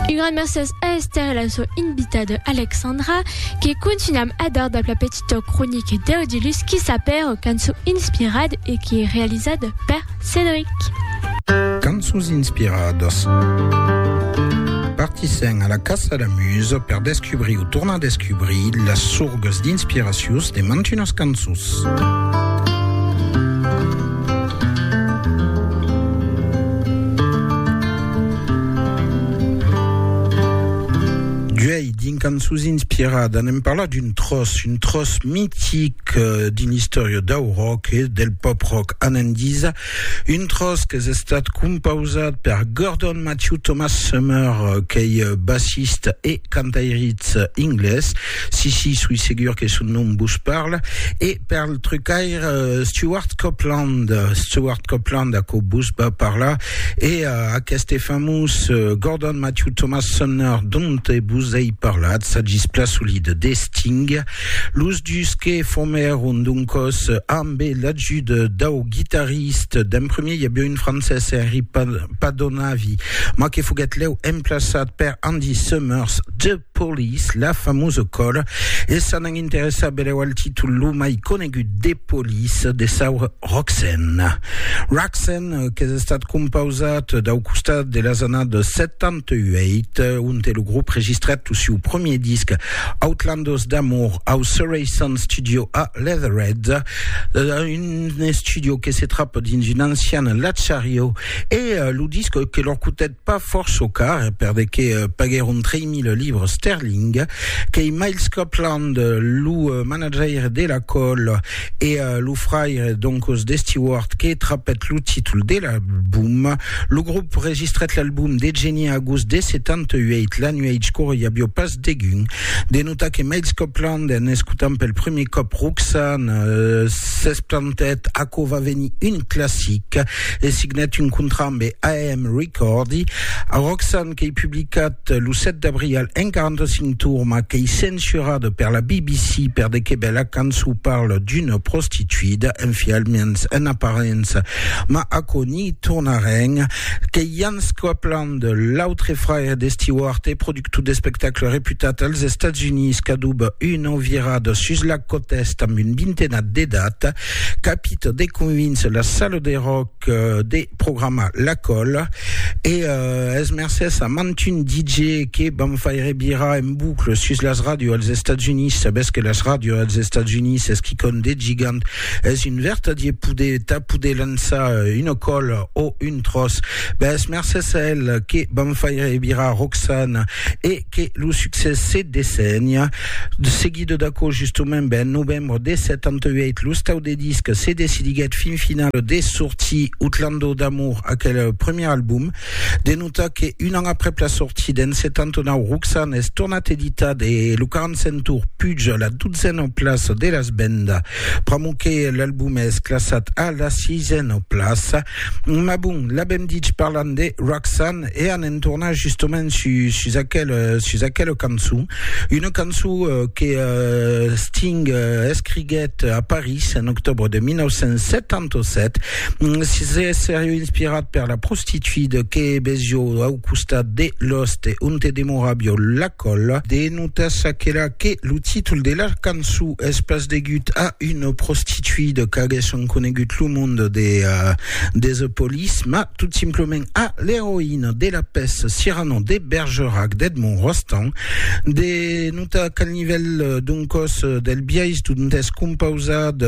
Un gran mercés a Esther e la so invitada Alexandra que continuam a dar dab la petita cronica d'Audilus qui s'apèra cançó inspirad e qui es realizad per Cédric. Cançons inspiradas. Partissèm a la caça la musa per descubrir o tornar a descubrir las sorgas d'inspiracions de mantunas cançons. D'uèi, d'un cançons inspirada, anem parlar d'un tròç, un tròç mitic euh, d'un istòria dau rock e del pop rock a Nandisa, un tròç qu'es estat compausat per Gordon Matthew Thomas Summer, qu'ei bassista e cantairitz inglés, Si, si, soi segur que son nom vos parla. E per al trucaire Stewart Copeland, Stewart Copeland, aquò vos va parlar. E aqueste famós Gordon Matthew Thomas Sumner dont vos ei parlat, s'agís plan solid de Sting. Los dus que formèron doncòs amb l'ajut dau guitarrista d'en premier, i aviá un francés, Henry Padonavi, mas que foguèt lèu emplaçat per Andy Summers de Police, la famosa còla, e s'an an interessar belèu al títol lo mai conegut de Police, de saura Roxanne. Roxanne qu'es estat compausat dau costat de las annadas 78, onte lo grop registrèt lo siu premier disc Outlanders d'Amour au Surrey Sound Studio a Leatherhead, un estudio que se trapa dins un ancian latchariau, e lo disc que lor cotèt pas fòrt çò car, perdé que paguèron 3.000 libres sterling, qu'ei Miles Copland, lo manajaire de la col e lo fraire doncos de Stewart que trapèt lo títol de l'album. Lo grop registrèt l'album de Genie agost de 78, la nuèch qu'ora i avió pas degun de notar que Miles Copland, en escotant pel prumèr còp Roxanne, s'esplantèt, aquò va venir un classic. e signat un contrat ambe AM Recordi. A Roxanne qu'ei publicat lo 7 d'abrial en 45 tours ma qu'ei censurada per la BBC per de que bela cançon parla d'una prostituida, enfialmens en aparença, ma aquò n'i tornarem. Qu'ei Jan Scopeland, l'autre fraire de Stewart e productor d'espectacle reputat als Estats Units qu'adoba una virada sus la cota est amb un vintenat d'edat. capita de convincer la sala de rock de programar la cola e uh, es mercés a mantun DJ que vam faire virar en boucle sus las ràdios als Estats Units. Sabés que las ràdios als Estats Units es quicòm de gigant, es un vertadier poder, ta poder lançar euh, una cola o un tros. Ben, es mercés a el que vam faire virar Roxana e que lo succès se dessenha seguit d'aquò justement ben novembre de 78 lo stau de disc se decidiguèt fin final de sortir Utlando d'amour aquel premier album de notar que un an aprèp la sortida en 79 Roxanne es tornat editat e lo 45 tour puja la dotzena plaça de las vendas pr'amor que l'album es classat a la sisena plaça Ma bon, l'avèm dich parlant de Roxanne e anem tornar justament sus, sus, aquel, sus aquela cançon. Una cançon euh, que euh, Sting euh, escriguèt a París en octobre de 1977. Mm, si se seriu inspirat per la prostituida que vesió au costat de l'oste onte demoràvio la colla. De notas aquela que lo títol de la cançon Es pas degut a una prostituida qu'aguèsson conegut lo monde de Desepolis, mas tot simplement a l'eroïna de la pèça Cyrano de Bergerac d'Edmond Rostand. De notar qu'al nivèl d'un còs del biais dont es compausat,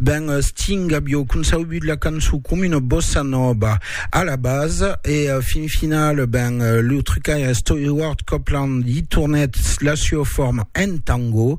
ben Sting avió concebut la cançon coma una bossa nòva a la basa e fin final, ben lo trucaire Stewart Copeland i tornèt la sua forma en tango.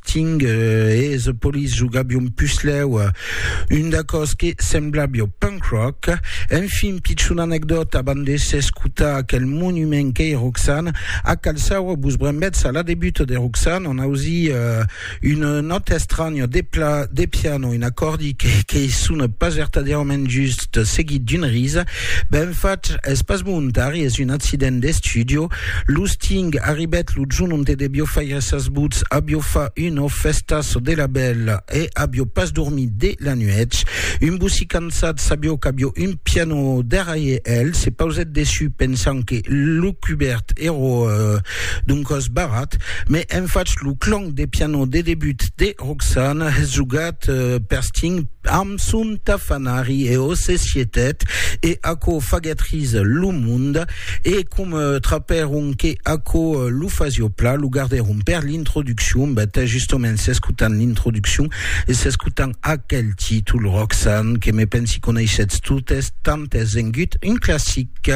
Ting e The Police jogabion puslèu un d'acòs que semblabio punk rock. Enfin, pichona anecdòta, abans de s'escotar aquel monument qu'ei Roxanne, a Cal Saura vos brembètz a la debuta de Roxanne, on ausi un nòta estranya de pla de piano, un acòrdi qu'ei sona pas vertadièrament just, seguit d'una risa. Ben fach, es pas volontari, es un accident d'estudio. Los Ting arribèt lo jorn onte debio faire Gràcias vos, avió fa una fèsta çò de la bèla e avió pas dormit de la nuèch. Un bocí cansat sabió qu'avió un pianò darrèir el, se pausèt dessus pensant que lo cubèrt èra d'un còs barrat, me en fach lo clang de pianò de debut de Roxana jogat per Sting amb son tafanari e o se sietèt e aquò faguèt ris lo monde. E com trapèron que aquò lo fasio pla, lo gardèron per l'introduccion, bèt, justament s'escotant l'introduccion e s'escotant aquel títol, Roxanne, que me pensi coneishetz totes, tant es vengut un classic.